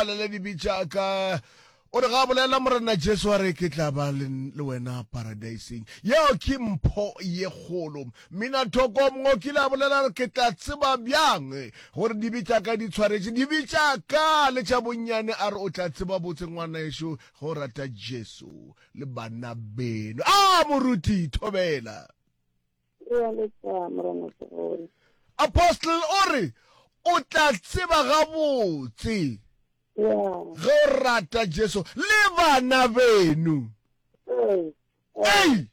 a le le dibe tša ka o re ga bolela morena jesu a re ke tla ba le le wena paradaiseng yeo ke mpho ye kgolo mmina thoko mongwe o kile a bolela re ke tla tseba bjang gore dibe tša ka di tshwaretše dibe tša ka le tša bonnyane a re o tla tseba botse ngwana ešo ge o rata jesu le bana beno a moruti thobela Re a lesa, Morena Segole. Apostle o re, O tla tseba gabotse. Ya. Ge o rata Jesu le bana beno. Ee. Ei!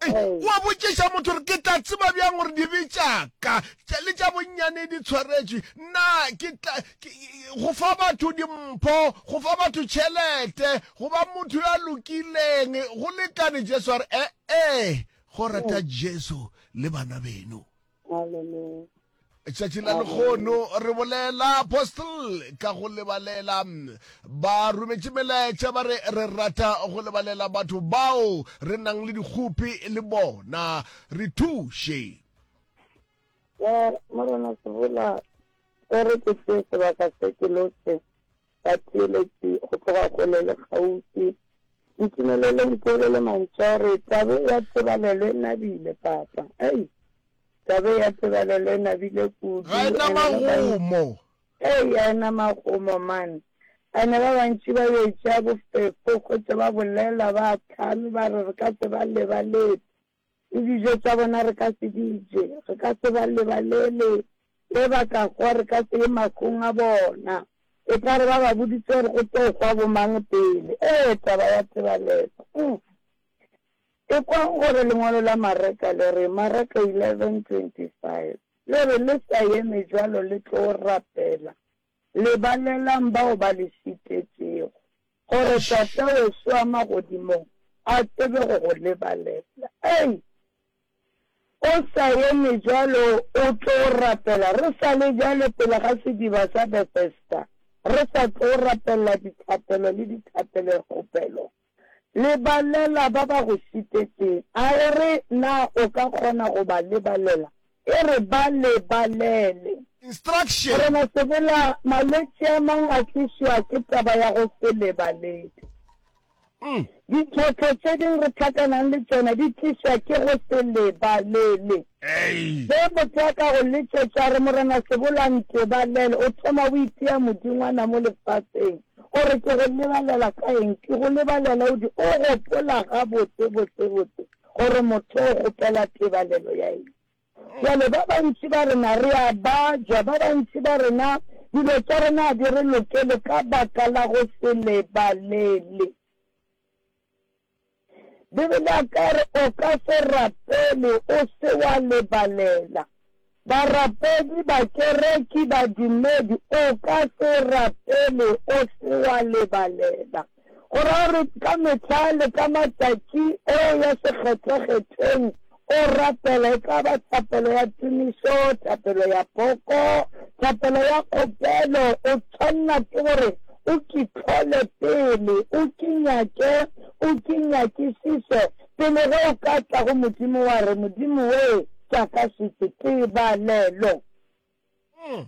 Ei, Ee. wa botšiša motho gore ke tla tseba bjang gore dibe tšaka tša- le tša bonnyane di tshwaretšwe na ke tla ke- go fa batho dimpho go fa batho tšhelete go ba motho yo a lokileng go lekane jesu a re ee Go rata Jesu le bana beno. Hallelujah. Tšatši la lekgono re bolela apostle ka go lebalela ba rometše melaetša ba re re rata go lebalela batho bao re nang le dikgopi le bona re thuše Ke morena Sebula, se re ke se sebaka se ke lotse Batheeletši go tloga kgole le kgauswi, ntumelele ntheelele mantšu a gore, Tabe ya tsebalelo e nabile, Papa. Ei, tabe ya tsebalelo e nabile kudu. Ga e na magomo. Ei, ga e na magomo, man. Ene ba bantši ba yo e tšea bofefo, gohle ba bolela, ba hlame, ba re, Re ka se ba lebaletse. Le dijo tša bona re ka se di je, re ka se ba lebalele, ge ba ka hwa re ka se ye mahlong a bona. E tla re ba ba boditše gore go tlo hwa bomang pele. Ee, taba ya tebalelo! Uff! Ekwang gore lengwalo la Mareka le re, Mareka 11:25, le re, Le sa eme bjalo le tlo rapela, Lebalelang bao ba le šetetšego, gore Tata weso wa magodimong a tsebe go go lebalela. Ei! O sa eme bjalo, o tlo rapela re sa le bjale pele ga sediba sa Bethesda, re sa tlo rapelela dithapelo le dithapelokgopelo. Lebalela ba ba go šitetseng. A e re, Na o ka kgona go ba lebalela? E re, Ba lebalele. Instruction. Morena Sebela, malwetši a mang a tlišwa ke taba ya go se lebalete. Ditlhohlo tše ding re hlakanang le tšona di tlišwa ke go se lebalele. Ge motho a ka go letšetša a re, Morena Sebela, ntebalele, o thoma o itia modingwana mo lefaseng. O re ke go lebalela ka eng? Ke go lebalela o di o gopola gabotse botse botse gore motho o kgopela tebalelo ya eng. Bjale ba bantši ba rena re a bajwa, ba bantši ba rena dilo tša rena ga di re lokele ka baka la go se lebalele. Bibele ya ka e re o ka se rapele o se wa lebalela. Barapedi, bakereki, badumedi, o ka se rapele o se wa lebalela. Go ra gore ka mehla le ka matšatši o ya sekgethwakgethweng O rapela, e ka ba thapelo ya tumišo, thapelo ya poko, thapelo ya kgopelo, o tshwanela ke gore o Ke hlole pele, o Ke nyake, o Ke nyakišiše, pele ge o ka tla go Modimo wa re, Modimo we, tša ka šetše, tebalelo. Ee.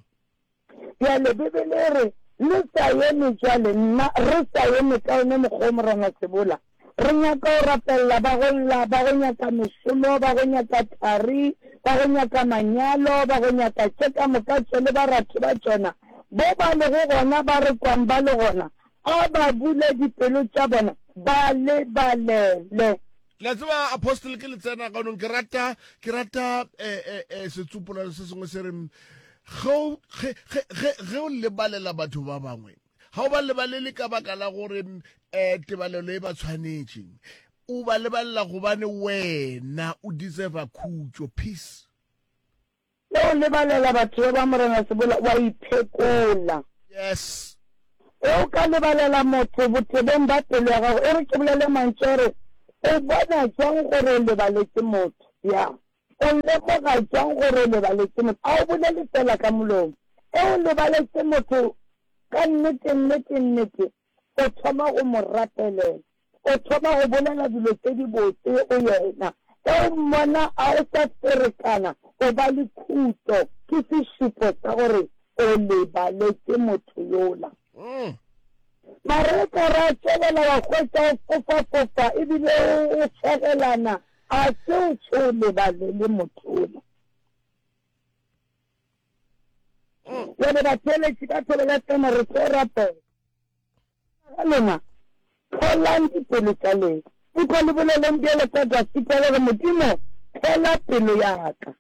Bjale Bibele e re, Le sa eme bjale, nna, re sa eme ka yone mokgwa wo Morangwa Sebola. Re nyaka go rapelela ba go lla, ba go nyaka mešomo, ba go nyaka thari, ba go nyaka manyalo, ba go nyaka tše ka moka tše le baratho ba tšona, bo ba lego gona, ba re kwang ba le gona, A ba bule dipelo tša bona ba lebalele. Le a tseba, Apostle, ke le tsena ganong, ke rata, ke rata eh, eh, eh, setsopolelo se sengwe se reng, ge o- ge- ge- ge- ge o lebalela batho ba bangwe, ga o ba lebalele ka baka la gore um tebalelo e ba tshwanetše, o ba lebalela gobane wena o deserva khutšo, peace. Ge o lebalela batho yo ba Morena Sebola wa iphekola. Yes. Ge o ka lebalela motho botebong ba pelo ya gago, e re ke bolele mantšu a re, o bona jwang gore o lebaletše motho? Ya. O lemoga jwang gore o lebaletše motho? A o bolele feela ka molomo. Ge o lebaletše motho ka nnete, nnete, nnete, o thoma go mo rapelela, o thoma go bolela dilo tše dibotse go yena. Ge o mmona a o sa ferekana, o ba le khutšo, ke sešupo sa gore o lebaletše motho yola. Mareka ra tšwelela, wa hwetša o fofafofa e bile o fegelana. A se o tšho o lebalele motho yola? Bjale batšweletši ka thoko ya tsena re tlo rapela ga lena, hlolang dipelo tša lena. Eupša le boleleng bjalo ka Dafita, le re, Modimo, hlola pelo ya ka.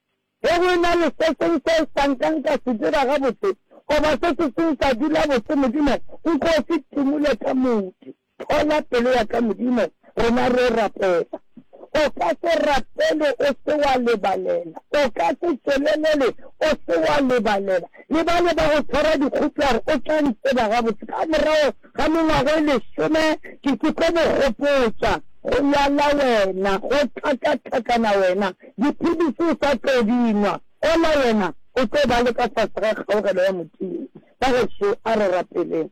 Ge go e na le se sengwe seo sa nkang ka se dira gabotse, goba se se seng sa dula botse, Modimo, nko se timule ka moke. Hlola pelo ya ka, Modimo, rena re rapela. O ka se rapele o se wa lebalela, o ka se tšwelelele o se wa lebalela. Le bale ba go tshwara dikhutlware, o tla di tseba gabotse. Ka morago ga mengwago e lesome, ke ke tlo go gopotša go lwala wena, go tlhakatlhakana wena, dipilisi o sa tlo di nwa. Ola wena o tlo ba le ka fase ga kgaogelo ya Modimo. Bageso, a re rapeleng.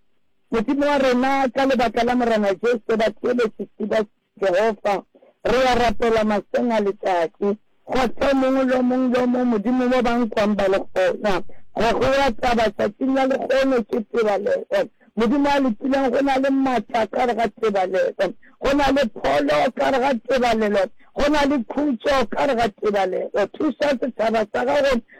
Modimo wa rena, ka lebaka la Morena Jesu, batho ba bešetši ba Jehofa, re ya rapela maseng a letšatši. Kgotla o mongwe le o mongwe le o mongwe, Modimo, mo ba nkwang ba le gona. Ga go wa taba, tšatšing la lekgono ke tebalelo. Modimo a Lokileng, go na le matla ka gare ga tebalelo. Go na le pholo ka gare ga tebalelo. Go na le khutšo ka gare ga tebalelo. Thuša setšhaba sa Gago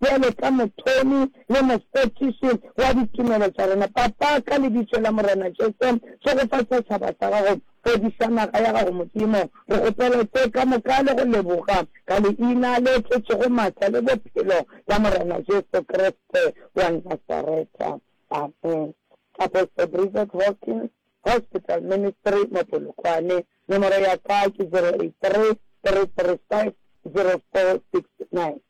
Bjalo ka Mothomi le Mofetiši wa ditumelo tša rena, Papa, ka Lebitso la Morena Jesu, tsogofatša setšhaba sa Gago. Fodiša naga ya Gago, Modimo. Re kgopela tše ka moka le go leboga, ka Leina le tletšego matla le Bophelo la Morena Jesu Kriste wa Nasareta. Amen. Apostle Bridget Hawkins, Hospital Ministry, mo Polokwane. Nomoro ya ka ke 083 335 0469.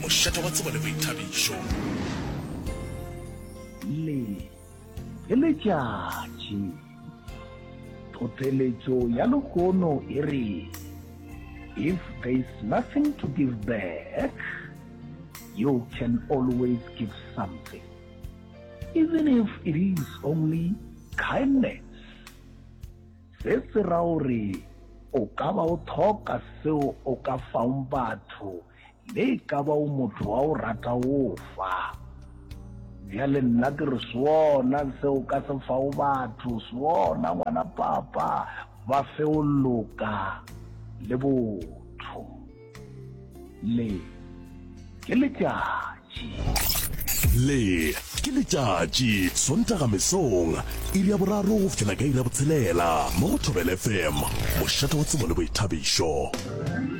Mošate wa tsebo le boithabišo. Le, le letšatši. Tlhohleletšo ya lehono e re, If there is nothing to give back, you can always give something, even if it is only kindness. Se se ra gore o ka ba o thoka seo o ka faong batho Le e ka ba o motho wa go rata go fa. Bjale nna ke re, Sona se o ka se fago batho, sona, ngwana papa, ba fe go loka le botho. Le ke letšatši. Le ke letšatši, Sontaga mesong, iri ya boraro go fihlela ka iri ya botshelela, mo go Thobela FM, mošate wa tsebo le boithabišo.